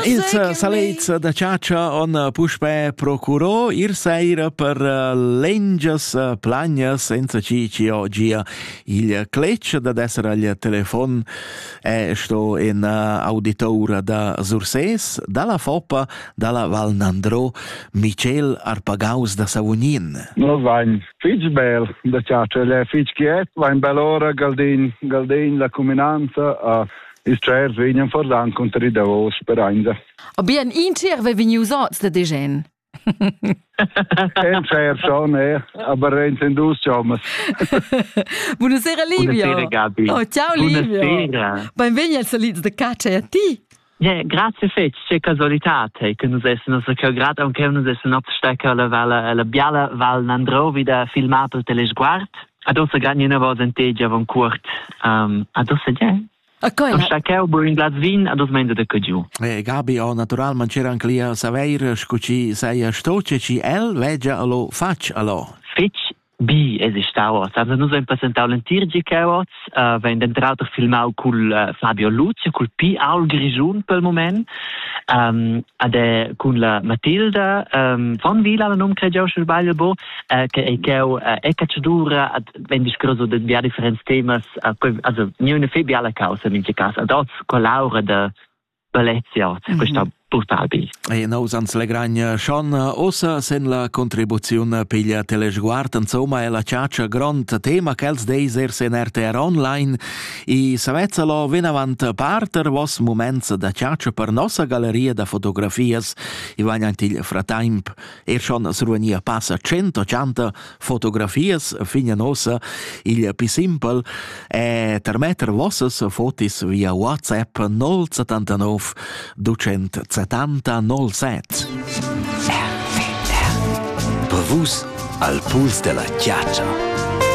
Ils salets da chatscha on puspè procurò ir saira per lengias plagnas senza chi chi ho gia il cletg dad esser al telefon e sto in auditoura da Surses, dalla Foppa, dalla Val Nandro, Michel Arpagaus da Savognin. Nos vain fich bel da chatscha, el è fich quiet, vain bel ora Galdin, Galdin la cuminanza a Ils tschairs vegnan fordan cunter il davos sperainda. Aber ein inter ve vegnius oz de degen. En tschairs schon, eh, aber en dus chommas. Buonasera Livio. Buonasera Gabi. Oh, ciao Livio. Buonasera. Benvegni als solids de Caccia e a ti. Yeah, grazie fetg, che casualità te che nus essens che grad aunque nus essens oz stecker la vala la biala val Nandrovi da filmar pel telesguard. Ad ossa gan ina vosa en te giavan cuort. Um, ad ossa ge? A coi. Am sta cheu bur in glas vin, ad os menza da cadiu. E Gabi, o naturalment c'era anche lì a saveir, scu ci saia stoce ci el legia allo fac allo. Fitch bi es stau oz. Also nus ein presentau l'entir gi cheu oz, uh, vein dentro auter filmau cul uh, Fabio Luce, cul Pi Aul Grigiun pel moment, um, ade cun la Matilda um, von Vila, la num cregiau schel sbagl bo, che ei cheu e catschadura ad vegn discurso de bia differents temas also niune fe biala causa in cas ad oz collaura de Valencia, mm -hmm. questa portabile. E nous ans legragn schon ossa sen la contribuziun piglia telesguard, insomma è la ciaccia grond tema che els deis ers in RTR online e savezza lo vinavant parter vos moments da ciaccia per nossa galleria da fotografias e vagnant il fratemp Er schon as ruania passa tschenta tschanta fotografias fin a nossa il più simpel e per metter vossas fotis via WhatsApp 079 270 07. Per vus al puls della chiaccia.